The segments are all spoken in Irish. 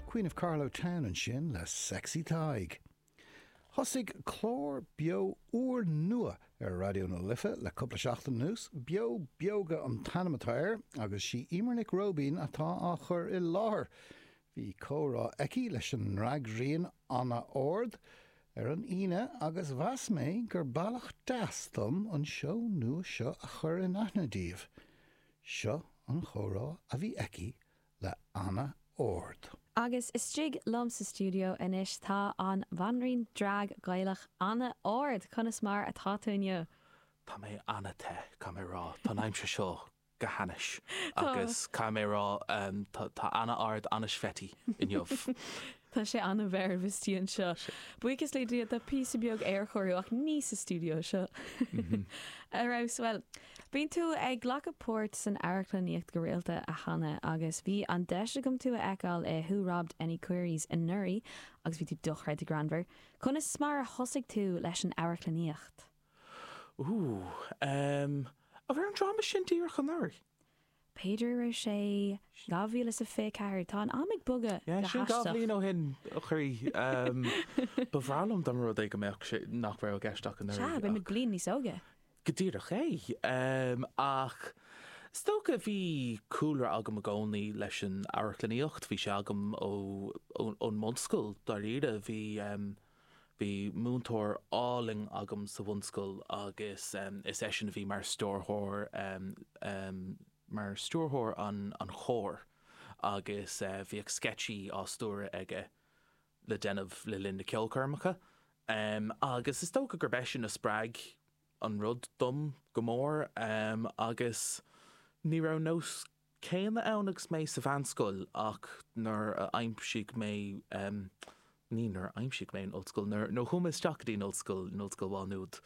Queen of Carlow Town ansin le Sexy Tadhg. Thosaigh clár beo úr nua ar Raidió na Life le cúpla seachtain anuas. Beo Beoga an t-ainm atá air agus is í Emer Nic Róibín atá á chur i láthair. Bhí comhrá aici leis an ndrag-ríon Anna Ard ar an Aoine agus mheas mé gur bhealach deas dom an seó nua seo a chur in aithne daoibh. Seo an chomhrá a bhí aici le Anna Ard. Agus istigh liom sa stiúideo anois tá an Bhanríon Drag Gaelach, Anna Ard. Conas mar atá tú inniu? Tá mé an-te, caithfidh mé a rá. Tá an aimsir seo go hainnis. Tá. Agus caithfidh mé a rá, tá Anna Ard an-sweaty inniu. Tá sé an-mheirbh istigh anseo. Buíochas le Dia, tá píosa beag aerchóiriú ach níl sa stiúideo seo. Ar fheabhas, bhuel, bíonn tú ag glacadh páirt san amharclannaíocht go rialta, a Anna, agus bhí an deis agam tú a fheiceáil i Who Robbed Annie Queeries anuraidh agus bhí tú dochreidte greannmhar. Conas mar a thosaigh tú leis an amharclannaíocht? Ooh, ehm, an raibh an dráma sin díreach anuraidh? B'fhéidir go raibh sé 2024, tá an am ag bogadh go haisteach. Sin dhá bhliain ó shin, a chroí. Ba bhreá liom dá mba rud é go mbeadh sé, nach raibh i gceist ach anuraidh. Sea, beimid bliain níos óige. Go díreach é. Ach is dócha, bhí cúlra agam i gcónaí leis an amharclannaíocht, bhí sé agam ón mbunscoil, dáiríre. Bhí. Bhí múinteoir álainn agam sa bhunscoil agus is eisean a bhí mar stiúrthóir, mar stiúrthóir an chóir agus bhíodh sceitsí á stiúradh aige le déanamh le linn na ceolchoirmeacha agus is dócha gurb eisean a spreag an rud dom go mór agus ní raibh nós céanna ann agus mé sa mheánscoil ach nuair a aimsigh mé, ní nuair a aimsigh mé an ollscoil, nuair a chuaigh mé isteach go dtí an ollscoil, in Ollscoil Mhá Nuad,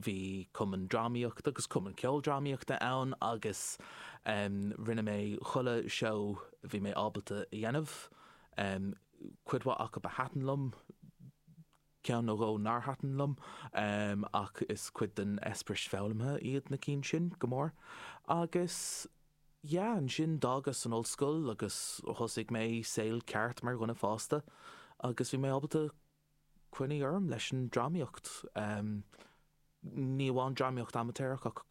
bhí cumann drámaíochta agus cumann ceoldrámaíochta ann agus rinne mé chuile sheó a bhí mé ábalta a dhéanamh, cuid mhaith acu a thaitin liom, Ceann nó dhó nár thaitin liom, ach is cuid den eispéireas foghlamtha iad na cinn sin, go mór. Agus, yeah, ansin d'fhágas an ollscoil agus thosaigh mé saol ceart mar dhuine fásta, agus bhí mé ábalta coinní orm leis an drámaíocht. ní amháin dramaíocht amaitéarach ach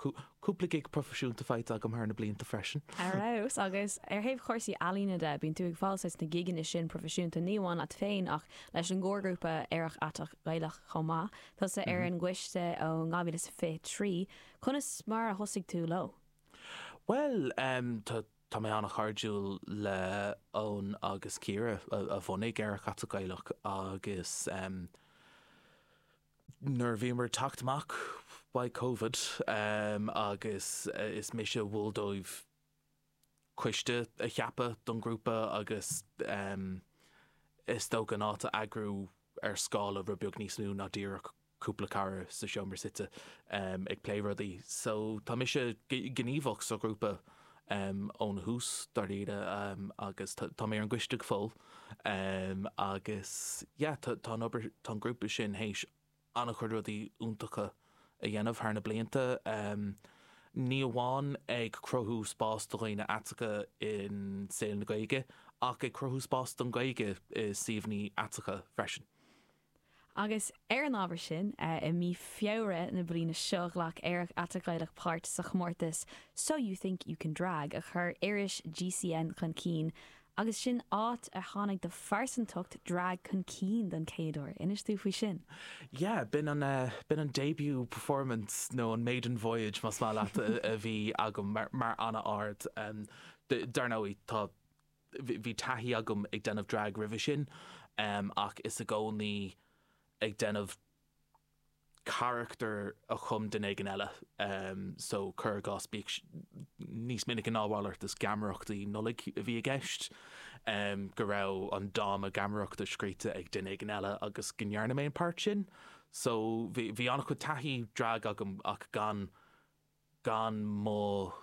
cúpla gig proifisiúnta faighte agam thar na blianta freisin. Ar fheabhas. Agus ar thaobh chúrsaí ealaíne de, bíonn tú ag fáil taithí sna gigeanna sin proifisiúnta, ní amháin leat féin ach leis an gcomharghrúpa Aerach Aiteach Gaelach chomh maith. Tusa ar an gcoiste ó 2023. Conas mar a thosaigh tú leo? Bhuel, tá mé an-chairdiúil le Eoin agus Ciara a bhunaigh Aerach Aiteach Gaelach agus. nuair a bhíomar ag teacht amach as covid agus is mise a mhol dóibh coiste a cheapadh don ghrúpa agus is dócha é a eagrú ar scála rud beag níos mó ná díreach cúpla cara sa seomra suite ag plé rudaí so tá mise gníomhach sa ghrúpa óna thús, dáiríre, agus tá mé ar an gcoiste go fóill agus yeah tá an obair, tá an grúpa sin théis an-chuid rudaí iontacha a dhéanamh thar na blianta, ní amháin ag cruthú spás do dhaoine aiteacha i saol na Gaeilge ach ag cruthú spás don Ghaeilge i suíomhannaí aiteacha freisin. Agus ar an ábhar sin, i mí Feabhra na bliana seo ghlac Aerach Aiteach Gaelach páirt sa chomórtas So You Think You Can Drag a chuir iris GCN chun cinn agus sin áit ar tháinig do phearsantacht drag chun cinn don chéad uair. Inis dúinn faoi sin. Yeah, b'in an, b'in an debut performance nó an maiden voyage más maith leat a bhí agam mar, mar an-ard. Dar ndóigh tá. Bhí taithí agam ag déanamh drag roimhe sin ach is i gcónaí ag déanamh carachtar a chum duine éigin eile so cuir i gcás bíodh níos minice ná a mhalairt is geamaireachtaí Nollaig a bhí i gceist go raibh an dáma geamaireachta scríofa ag duine éigin eile agus go ndearna mé an páirt sin so bhí an-chuid taithí drag agam ach gan gan mo.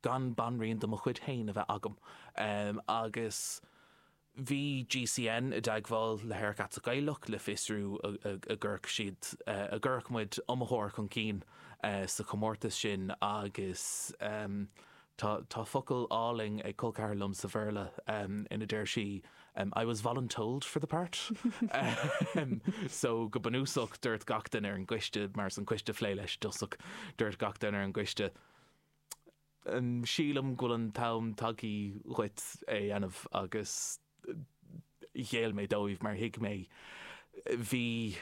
gan banríon de mo chuid féin a bheith agam. Agus bhí GCN i dteagmháil le hAerach Aiteach Gaelach le fiosrú an gcuirfeadh siad. an gcuirfeadh muid iomaitheoir chun cinn sa chomórtas sin agus Tá focal álainn ag col ceathar liom sa Bhéarla ina deir sí I was voluntold for the part so go bunúsach dúirt gach duine ar an gcoiste, mar is an coiste a phléigh é i dtosach, dúirt gach duine ar an gcoiste sílim go bhfuil an t-am tagthaí dhuit é a dhéanamh agus. Ghéill mé dóibh mar thuig mé, bhí,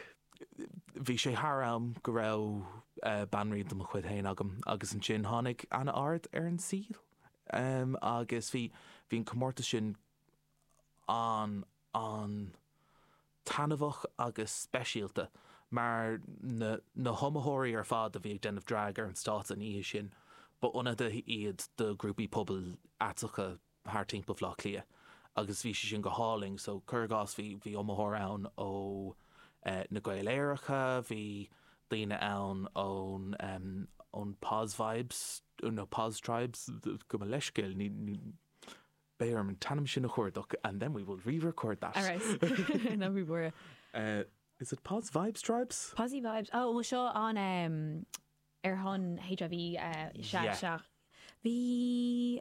bhí sé thar am go raibh banríon de mo chuid féin agam agus ansin tháinig Anna Ard ar an saol agus bhí, bhí an comórtas sin an, an, taitneamhach agus speisialta mar na, na hiomaitheoirí ar fad a bhí ag déanamh drag ar an stáitse an oíche sin, ba ionadaithe iad do ghrúpaí pobail aiteacha thart timpeall Bhleá Cliath agus bhí sé sin go hálainn so cuir i gcás bhí bhí iomaitheoir ann ó na Gaeil Aeracha, bhí daoine ann ón ón Poz Vibes nó Poz Tribes, gabh mo leithscéal ní ní beidh orm an t-ainm sin a chuardach and then we will re-record that. All right no we were Uh is it Poz Vibes Tribes? Pozzy Vibes oh bhfuil seo an ar shon HIV uh sea sea bhí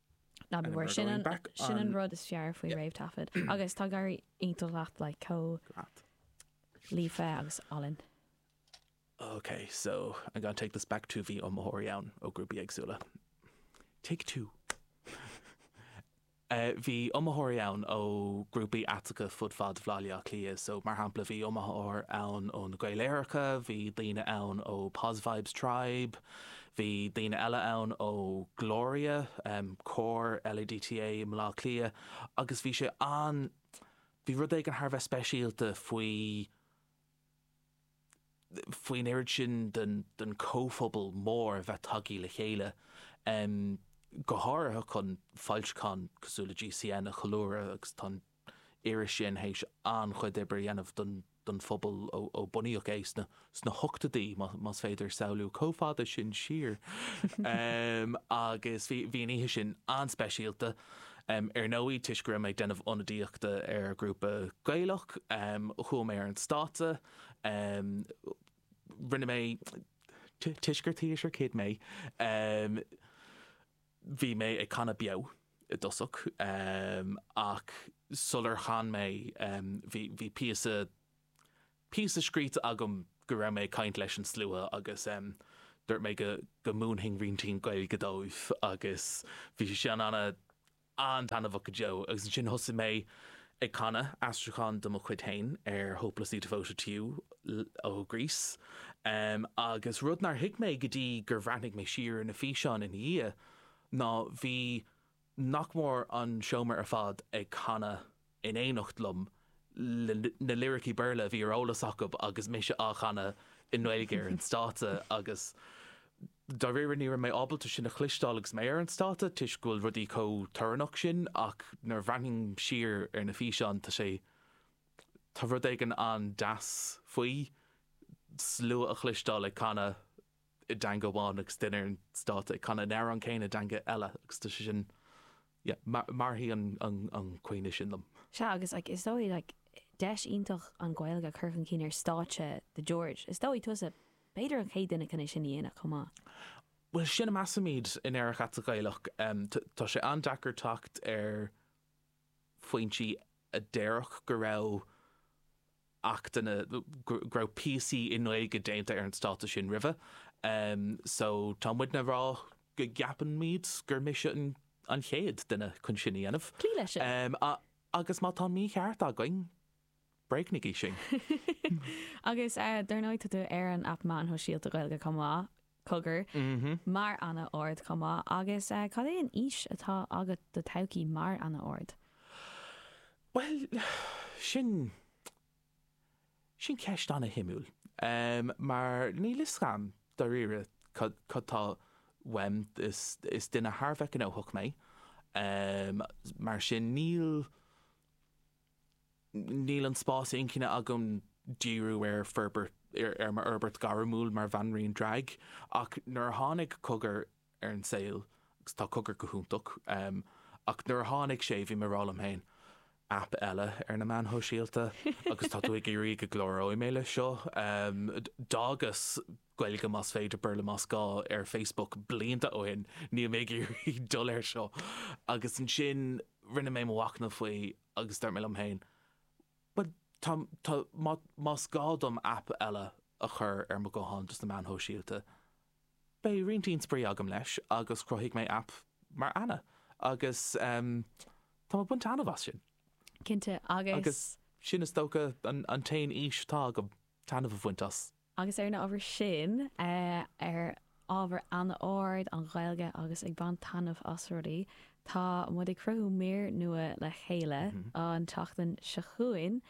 Ná bí mhór, sin an rud is fearr faoi réamhthaifead agus tá Gaeilge iontach agat, like, chomh líofa agus álainn. Ok, so I'm gonna take this back to bhí iomaitheoirí ann ó grúpaí éagsúla. Take two. Bhí iomaitheoirí ann ó grúpaí aiteacha fud fad Bhaile Átha Cliath, so mar shampla bhí iomaitheoir ann ó na Gaeil Aeracha, bhí daoine ann ó Poz Vibes Tribe, Bhí daoine eile ann ó Gloria, cór LADTA i mBleá Cliath agus bhí sé an, bhí rud éigin thar a bheith speisialta faoi, faoi an oiread sin den comhphobal mór a bheith tagtha le chéile, go háirithe chun foilseachán cosúil le GCN a cheiliúradh agus tá an Iris sin théis an-chuid oibre a dhéanamh don phobal ó bunaíodh é sna hochtóidí, más féidir samhlú chomh fada sin siar, agus bhí an oíche sin an-speisialta. Ar ndóigh, toisc go raibh mé ag déanamh ionadaíochta ar ghrúpa Gaelach, chuaigh mé ar an stáitse. Rinne mé toisc gur Tíos ar Céad mé. Bhí mé ag canadh beo i dtosach ach sular chan mé bhí píosa píosa scríte agam go raibh mé ag caint leis an slua agus dúirt mé go múinfinn roinnt Gaeilge dóibh agus bhí sé an-taitneamhach go deo agus ansin thosaigh mé ag canadh aistriúchán de mo chuid féin ar 'Hopelessly Devoted to You' ó Grease, agus rud nár thuig mé go dtí gur bhreathnaigh mé siar ar na físeáin ina dhiaidh ná bhí nach mór an seomra ar fad ag canadh in éineacht liom le na liricí Béarla a bhí ar eolas acu agus mise á chanadh i nGaeilge ar an stáitse agus Dáiríre ní raibh mé ábalta sin a chloisteáil agus mé ar an stáitse toisc go bhfuil rudaí chomh torannach sin ach nuair a bhreathnaím siar ar na físeáin tá sé, tá rud éigin an-deas faoi slua a chloisteáil ag canadh i dteanga amháin agus duine ar an stáitse ag canadh an amhráin céanna i dteanga eile agus tá sé sin, yeah, mairfidh an cuimhne sin liom. Sea agus like is dóigh like deis iontach an Ghaeilge a chur chun cinn ar stáitse The George. Is dóigh tusa B'fhéidir an chéad duine chun é sin a dhéanamh chomh maith. Bhuel, sin a measaimid in Aerach Aiteach Gaelach. Tá sé an-deacair teacht ar foinsí a déarfadh go raibh achtanna, go raibh píosaí i nGaeilge déanta ar an stáitse sin roimhe. So tá muidne a rá go gceapaimid gur mise an chéad duine chun sin a dhéanamh. Cloígh leis sin. Agus má tá mícheart againn, Bréagnaígí sinn! Agus dar ndóigh tá tú ar an aip meáin shóisialta Ghaeilge chomh maith, Cogar, mar Ana Ard chomh maith agus cad é an fhís atá agat do todhchaí mar Ana Ard? Bhuel, sin, sin ceist ana shuimiúil mar níl fhios a'm dáiríre cad, cad tá uaim, is, is duine thar a bheith gnóthach mé mar sin níl, Níl an spás inchinne agam díriú ar forbairt, ar m'fhorbairt ghairmiúil mar bhanríon draig, ach nuair a tháinig Cogar ar an saol, agus tá Cogar go hiontach, ach nuair a tháinig sé, bhí mé a rá liom féin, aip eile ar na meáin shóisialta, agus tá tú ag iarraidh go gcláróidh mé leis seo? D'fhágas. Gaeilge más féidir, Béarla más gá, ar Facebook blianta ó shin, níl mé ag iarraidh dul air seo. Agus ansin rinne mé mo mhachnamh faoi agus dúirt mé liom féin, bhuel, tá, tá, má, más gá dom aip eile a chur ar mo ghuthán dos na meáin shóisialta, beidh roinntín spraoi agam leis agus chruthaigh mé aip mar Anna agus em tá mé ag baint taitneamh as sin. Cinnte, agus. Agus sin is dócha an, an t-aon fhís atá agam, taitneamh a bhaint as agus ar an ábhar sin, ar ábhar Ana Ard an Ghaeilge agus ag baint taitneamh as rudaí, tá muid ag cruthú mír nua le chéile an tseachtain seo chugainn.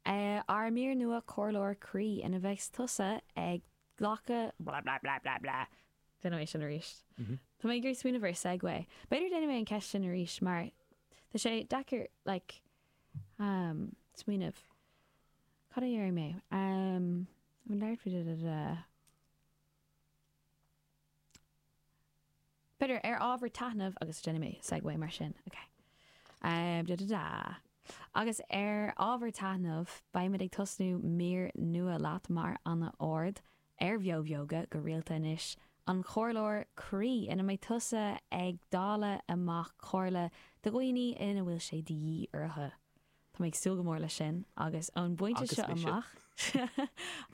Ár mír nua Comhairleoir Croí ina bheidh tusa ag glacadh blah blah blah blah blah. Déanfaidh mé sin arís. Tá mé ag iarraidh smaoineamh ar segue. B'fhéidir déanfaidh mé an ceist sin arís mar tá sé deacair like smaoineamh. Cad a dhéarfaidh mé? Bhí neart faoi da da da da. B'fhéidir, ar ábhar taitneamh, agus déanfaidh mé segue mar sin, ok. Da da da. Agus ar ábhar taitneamh, beimid ag tosnú mír nua leat mar Ana Ard ar bheobheoga go rialta anois, an comhairleoir croí ina mbeidh tusa ag dáileadh amach comhairle do dhaoine ina bhfuil sé de dhíth orthu. Tá mé ag súil go mór leis sin agus ón bpointe seo amach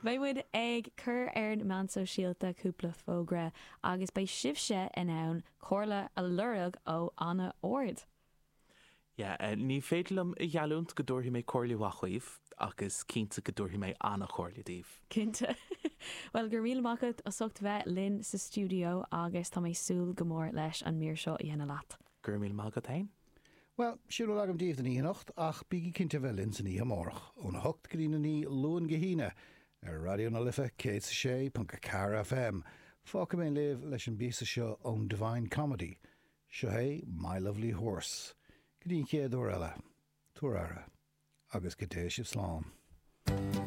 beidh muid ag cur ar na meáin shóisialta cúpla fógra agus beidh sibhse in ann comhairle a lorg ó an-ard. Ní féidir liom a gheallúint go dtabharfaidh mé comhairle mhaith dhaoibh, agus cinnte go dtabharfaidh mé an-chomhairle daoibh. Cinnte. Bhuel, go raibh míle maith agat as ucht bheith linn sa stiúideo agus tá mé ag súil go mór leis an mír seo a dhéanamh leat. Go raibh míle maith agat féin. Bhuel, sin a bhfuil agam daoibh don oíche anocht, ach bígí cinnte a bheith linn san oíche amárach, ón a hocht go dtí a naoi, Luan go hAoine, ar Raidió na Life 106.4 FM. Fágfaidh mé libh leis an bpíosa seo ón Divine Comedy, Seo é My Lovely Horse go dtí an chéad uair eile, tabhair aire, agus go dté sibh slán.